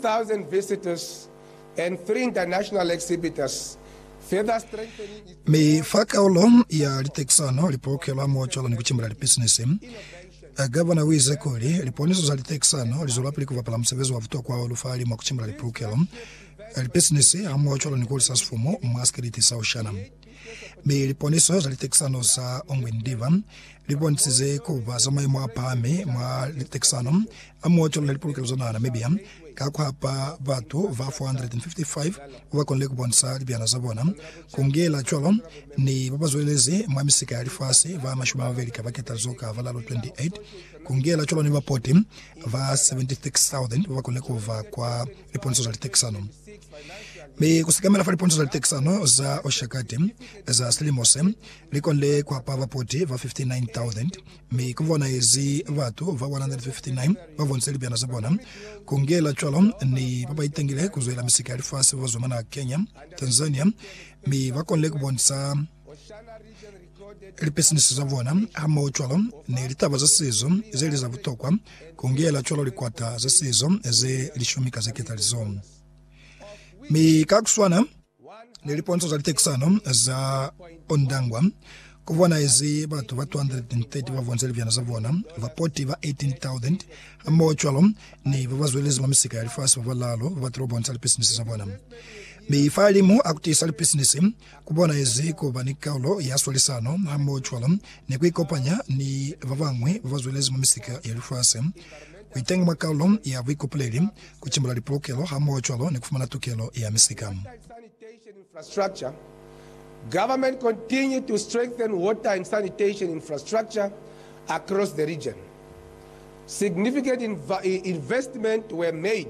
thousand visitors and three international exhibitors, further strengthening its Mi role fa kaulo ya litekisano, lipolokelo hamohocwalo ni kucimbila lipisinisi, Gavana uize kuli, Liponiso za litekisano lizwelapili kubapala musebezi wa butokwa hahulu fahali mwa kucimbila lipolokelo, lipisinisi hamohocwalo ni kuhulisa sifumu mwa sikiliti sa Oceania. Mi liponiso za litekisano za Ongwen Diva libonisize kuba za maimo apahami mwa litekisano a muotolola lipolokelo za naha Namibia ka kuhapa batu ba 455 bakonile kubonisa libyana za bona, kungela cwalo ni babazwelelezi mwa misika ya lifasi ba mashumi amabeli ka baketali zo ka balalo, 28, kungela cwalo ni bapoti ba 76,000 bakonile kuba kwa liponso za litekisano, mi ku sekamela fa liponso za litekisano za Oshakati za silimo se, li konde ku hapa bapoti ba 59,000, mi ku bonahezi batu ba 159 ba bonise libyana za bona ku ngela cwalo ni ba ba itangile ku zwela misika ya lifasi ba zwa mwa naha Kenya, Tanzania, mi ba konde ku bonisa Lipesiniso za bona hamohocwalo ni litaba za sizo ze li za butokwa, ku ngela cwalo likwata za sizo ze lishumi ka ze ketalizo. Mi ka ku swana ni liponzo za litekisano za Ondangwa, ku bonahezi batu ba 230 ba bonze libyana za bona, bapoti ba 18,000, hamohocwalo ni ba ba zwelezi mwa misika ya lifasi ba balaalu ba batile ku bonisa lipesiniso za bona. Mi fahalimu a ku tiisa lipesiniso, ku bona ezi ku ba ni kaulo ya swalisano hamohocwalo ni ku ikopanya ni ba bañwi ba ba zwelezi mwa misika ya lifasi, ku itenga mwa kaulo ya buikopoleli, ku timbula lipolokelo hamohocwalo ni ku fumana tukelo ya misika. Government continue to strengthen water and sanitation infrastructure across the region. Significant investments were made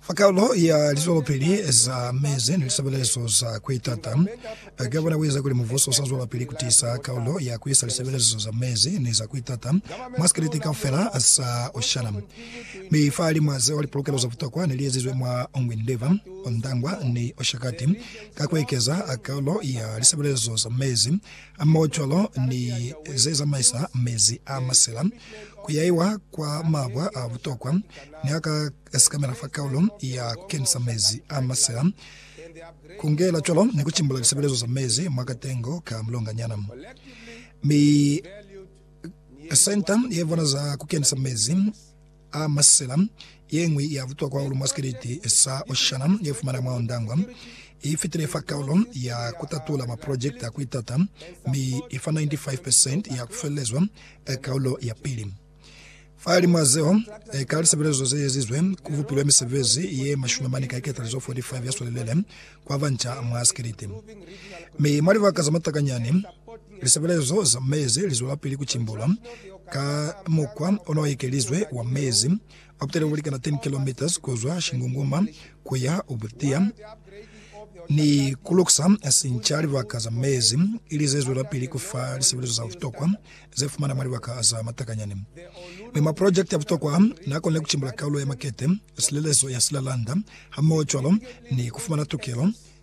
Fa kalo ya lizwelopili za mezi ni lisebelezo za kuitata, ka kona kueza kuli mubuso usa zwelapili kutiisa kalo ya kuisa lisebelezo za mezi ni za kuitata mwa sikelete kaufela sa Oceana. Mi fahalimwa zeo, lipolokelo za butokwa ne li ezizwe mwa Ongwen River, Ondangwa ni Oshakati ka kuekeza kalo ya lisebelezo za mezi hamoho cwalo ni ze zamaisa mezi a masela kuyaiwa kwa mabwa a butokwa ni a ka Sekamela fa kaulo ya kukenisa mezi a masela, kungela cwalo ni kucimbula lisebelezo za mezi mwa katengo ka mulonganyana. Mi senta ye bona za kukenisa mezi a masela yeñwi ya butokwa hahulu mwa sikeleti sa Oceana ye fumana mwa Ondangwa i fitile fa kaulo ya kutatula maprojekte a kuitata, mi ifa 95 percent ya kufelelezwa kaulo ya pili. Fahalimw'a zeo, ka lisebelezo ze ezizwe, ku bupilwe misebezi ye mashumi mane ka iketalizo 45 ya swelelele kwa banca mwa sikiliti. Mi mwa libaka za matakanyani, lisebelezo za mezi li zwelapili ku cimbulwa ka mukwa o no ekelizwe wa mezi Ba kutile ku likana 10 kilometres ku zwa Shingunguma ku ya Obutia ni ku lukusa sinca libaka za mezi, ili ze zwelapili ku fa lisebelezo za butokwa ze fumana mwa libaka za matakanyani. Mi maprojekiti a butokwa a, n'a konile ku cimbula kaulo ya makete, silelezo ya silalanda, hamoho cwalo ni ku fumana tukelo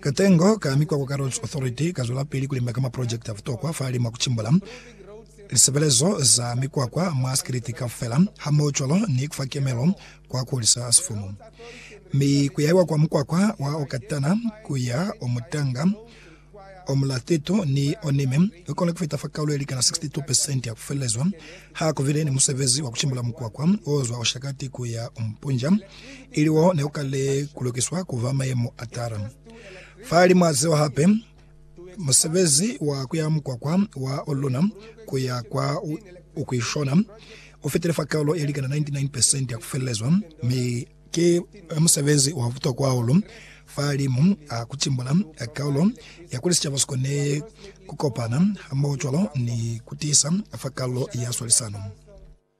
Katengo ka Mikwakwa ka Roads Authority kazwelapili kulimba ka maprojekiti a butokwa fahali mwa kucimbula lisebelezo za mikwakwa mwa sikiliti kaufela hamohocwalo ni kufa kemelo kwa kuhulisa sifumu mi kuyaiwa kwa mukwakwa wa Okatana kuya Omutanga, Omulathito ni Onime kukona kufita fa kaulo yelikana 62 percent ya kufelelezwa. Hakubile ni musebezi wa kucimbula mukwakwa ozwa Oshakati kuya Ompunja. ili wo ne u kale ku lukiswa ku ba mayemo a tala. Fahalimu a zeo hape, musebezi wa kuya mukwakwa wa Olona ku ya kwa Ukwishona u fitile fa kaulo ye likana 99% ya ku felelezwa, mi ki musebezi wa butokwa hahulu fahalimu a ku timbula kaulo ya kuli sicaba si kone ku kopana hamoho cwalo ni ku tiisa fa kaulo ya swalisano.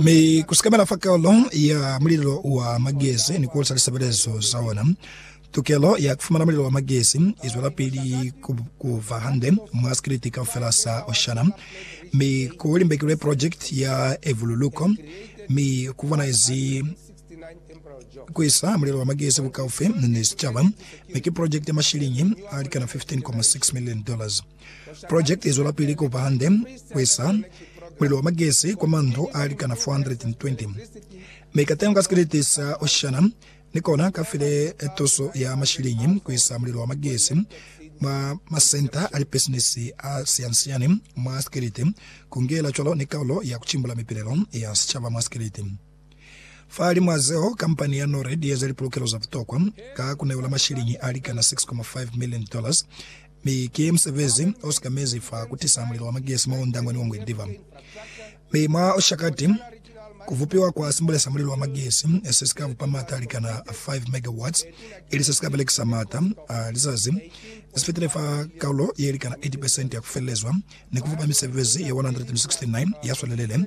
Mi ku sikamela fa Karolo ya Mulilo wa Magezi ni ku hulisa lisebelezo za ona, tukelo ya ku fumana mulilo wa magezi i zwelapili ku ba hande mwa sikiliti kaufela sa Oceania. Mi ku limbekilwe projekiti ya evululuko, mi ku bonahezi ku isa mulilo wa magezi bukaufi ni sicaba, mi ki projekiti ya mashiliñi a likana 15.6 million dollars. Project izwelapili kuba hande kuisa mulilo wa magesi kwa mandlu alikana 420, mi katengo ka sikeleti sa Oceana ni kona kafile tuso ya mashiliñi kuisa mulilo wa magesi mwa masenta a lipisinisi a siyansiani mwa sikeleti, kungela cwalo ni kaulo ya kucimbula mipilelo ya sichaba mwa sikeleti. Fahalimw'a zeo, kampani ya NORAD ieza lipulukelo za butokwa ka kuneola mashiliñi a likana 6.5 million dollars, mi ki musebezi osika mezi fa kutisa mulilo wa magesi mwa undangwani wa Ngwendiva. Mi mwa Oshakati, kuvupiwa kwa simbule sa mulilo wa magesi se sika vupa maata a likana 5 megawatts, ili sesika belekisa maata a lizazi zefitile fa kaulo yelikana 80% ya kufelelezwa ni kufupa misebezi ye 169 yaswelelele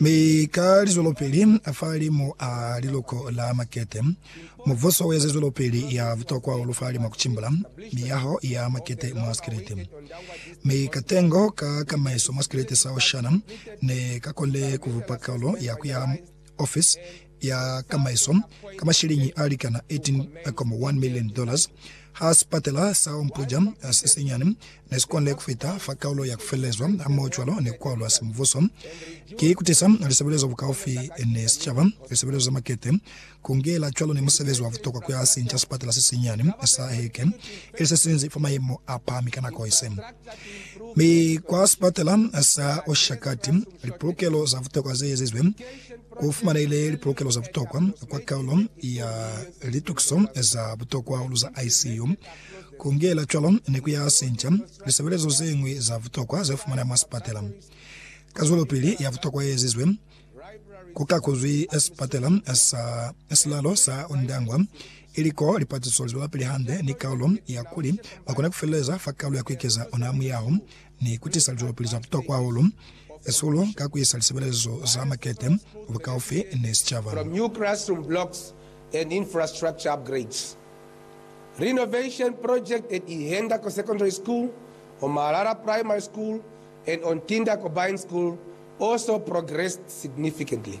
Mi ka lizwelopeli a fahalimu a liluko la makete, mubuso ueza zwelopeli ya butokwa hahulu fahalimu a kucimbula miyaho ya makete mwa sikelete. Mi katengo ka kamaiso mwa sikelete sa Oshana ne ka konile kubupa kalu ya kuya mwa ofisi ya kamaiso ka masheleñi a likana $18.1 milioni. Ha sipatela sa Ompuja se senyani ne si konile ku fita fa kaulo ya ku felelezwa hamohocwalo ni ku kwalulwa semuvhuso, ki kutisa lisebelezo bukaufi ni sicaba, lisebelezo za makete, ku ngela cwalo ni musebezi wa butokwa ku ya sinca sipatela se senyani sa Heke ili se sinzi fa mayemo a pahami ka nako ise. Mi kwa sipatela sa Oshakati, lipulukelo za butokwa ze ezizwe. Ku fumanehile lipolokelo za butokwa kwa kaulo ya litukiso za butokwa hahulu za ICU. Ku ngela cwalo ni ku ya sinca lisebelezo ze ñwi za butokwa ze fumaneha mwa sipatela. Ka zwelopili ya butokwa ye ezizwe, ku kakuzwi sipatela sa silalo sa Ondangwa, ili koo lipatiso li zwelapili hande ni kaulo ya kuli ba kone ku feleleza fa kaulo ya ku ikeza ona ha muyaho. ni ku tisa lizwelopili za butokwa hahulu, sihulu ka ku isa lisebelezo za makete bukaufi ni sicaba. From new classroom blocks and infrastructure upgrades, renovation project at Ihendako Secondary School, Omalala Primary School, and Ontinda Combined School also progressed significantly.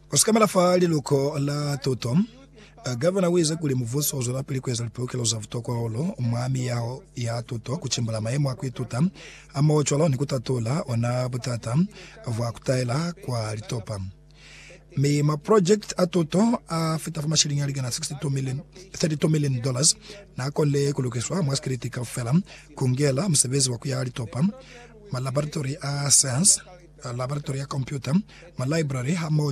Ku sikamela fa liluko la tuto, Gavana uize kuli mubuso uzwelapili kueza lipulukelo za butokwa hahulu mwa miyaho ya tuto, kutimbula mayemo a kuituta hamoho cwalo ni kutatula ona butata bwa kutaela kwa litopa. Mi maprojekiti a tuto a fita fa mashilingi alikana 62 million, 32 million dollars naakonile kulukiswa mwa sikiliti kaufela, kungela musebezi wa kuyaha litopa, malaboratori a science, laboratori ya kompyuta, malibrary hamoho